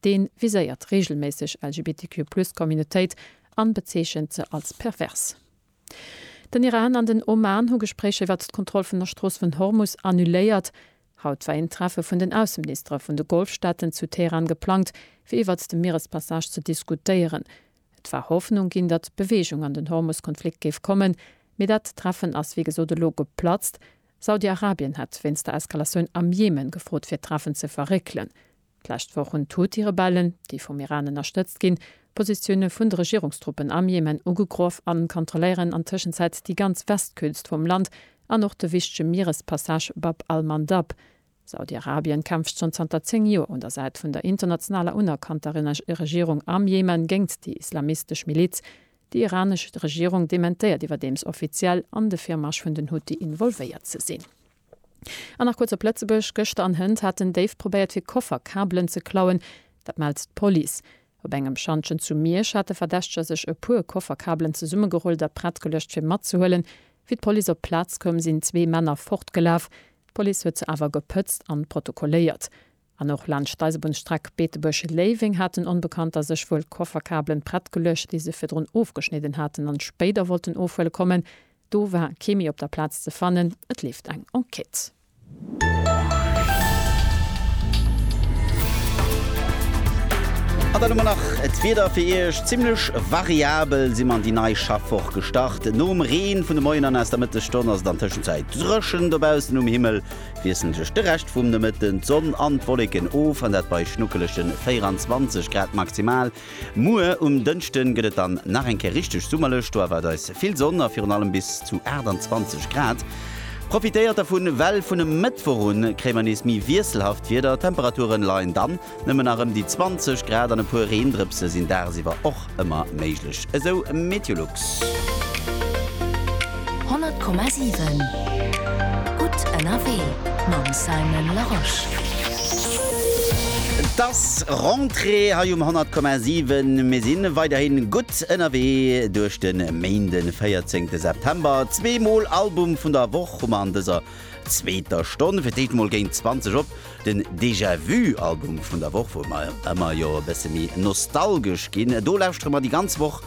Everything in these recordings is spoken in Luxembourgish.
Dee viséiert reegelméisseg LGBTQ-Plus-Communautéit an bezeechent se als pervers. Den Iran an den Oman hu Gespréicher iwwert d'Kontroll vun der Strooss vun Hormus annuléiert. Haut war een Treffe vun den Ausseministere vun de Golfstaaten zu Teheran geplangt, fir iwwert de Mierespassage ze diskutéieren. Et war Hoffnung ginn, datt Beweegung an den Hormus-Konflikt géif kommen, mee dat Treffen ass wéi gesot elo geplatzt. Saudi-Arabien hat wéinst der Eskalatioun am Jemen gefrot, fir d'Treffen ze verréckelen. D'lescht Woch hunn d'Houthi-Rebellen, déi vum Iran ënnerstëtzt ginn, d'Positioune vun de Regierungstruppen am Jemen ugegroff an kontrolléieren an Tëschenzäit déi ganz Westküst vum Land an och de wichtege Mierespassage Bab al-Mandab. Saudi-Arabien kämpft schonn zanter 10 Joer un der Säit vun der internationaler unerkannter Regierung am Jemen géingt déi islamistesch Miliz. Déi iranesch Regierung dementéiert iwwerdeems offiziell, an de Virmarsch vun den Houthi involvéiert ze sinn. An nach kuerz op Lëtzebuerg, Gëschter an Hënt haten Déif probéiert fir Koffer Kabelen ze klauen. Dat mellt d'Police. Op engem Schantjen zu Miersch hat de Verdächteger sech e puer Koffer Kabelen zesummegerullt a prett geluecht fir matzehuelen. Wéi d'Police op d'Plaz koum sinn zwee Männer fortgelaf. D'Police huet se awer gepëtzt an protokolléiert. An och laanscht d'Eisebunnsstreck Beetebuerg-Léiweng haten Onbekannter sech wuel Kofferkabelen prett geluecht, déi se virdrun ofgeschnidden haten an spéider wollten ofhuele kommen. Do war kee méi op der Plaz ze fannen. Et leeft eng Enquête. An dann hu mer nach d'Wieder fir Iech. Zimmlech variabel si mer an déi nei Schaffwoch gestart. Nom Reen vun de Moien an aus der Mëttesstonn ass et an Tëschenzäit dréchen dobaussen um Himmel. wiesselen sech de Rescht vum Nomëtten d'Sonn an d'Wolleken of, an dat bei schnuckelege 24 Grad maximal. Muer um Dënschde gëtt et dann nach eng Kéier richteg summerlech, do erwaart eis vill Sonn a virun allem bis zu 28 Grad. Profitéiert dervun, well vun e Mëttwoch un kréie mer nees méi wiesselhaft Wieder, d'Temperature leien dann Nëmmen nach ëm déi 20 Grad an e puer Reendrëpse sinn dagsiwwer och ëmmer méiglech, esou Meteolux. 100,7 gutt ënnerwee mam Simon Larosche. Et ass Rentrée hei um 100,7. Mir si weiderhi gutt ënnerwee duerch de Méinden, 14 September. Zwee mol Album vun der Woch hu mer an dëser zweeter Stonn fir d'éischt mol géint 20 op den Déjà Vu Album vun der Woch, wou mer ëmmer jo e bësse méi nostalgesch ginn. Do lauschtere mer déi ganz Woch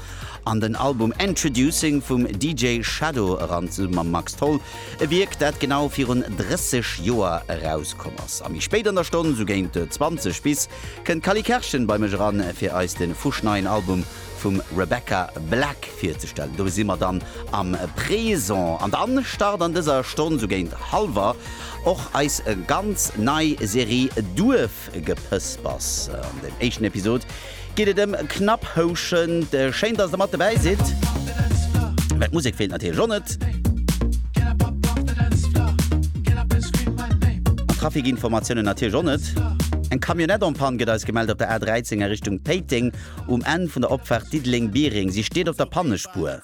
an den Album Introducing vum DJ Shadow eran zesumme mam Max Tholl, e Wierk dat genau virun 30 Joer erauskomm ass. A méi spéit an der Stonn, sou géint 20 bis, kënnt d'Cally Kerschen bei mech eran fir eis de fuschneien Album vum Rebecca Black virzestellen. Do si mer dann am Présent. An dann start an dëser Stonn sou géint hallwer och eis ganz nei Serie Duerfgepëspers. An dem éischten Episod geet et ëm Knapphouschen. Schéin, dass der mat dobäi sidd. Mä d'Musek feelt natierlech och net. An d'Trafikinformatiounen natierlech och net. Eng Camionnette en panne gëtt eis gemellt op der A13 a Richtung Péiteng. Um Enn vun der Opfaart Diddeleng-Biereng. Si steet op der Pannespuer.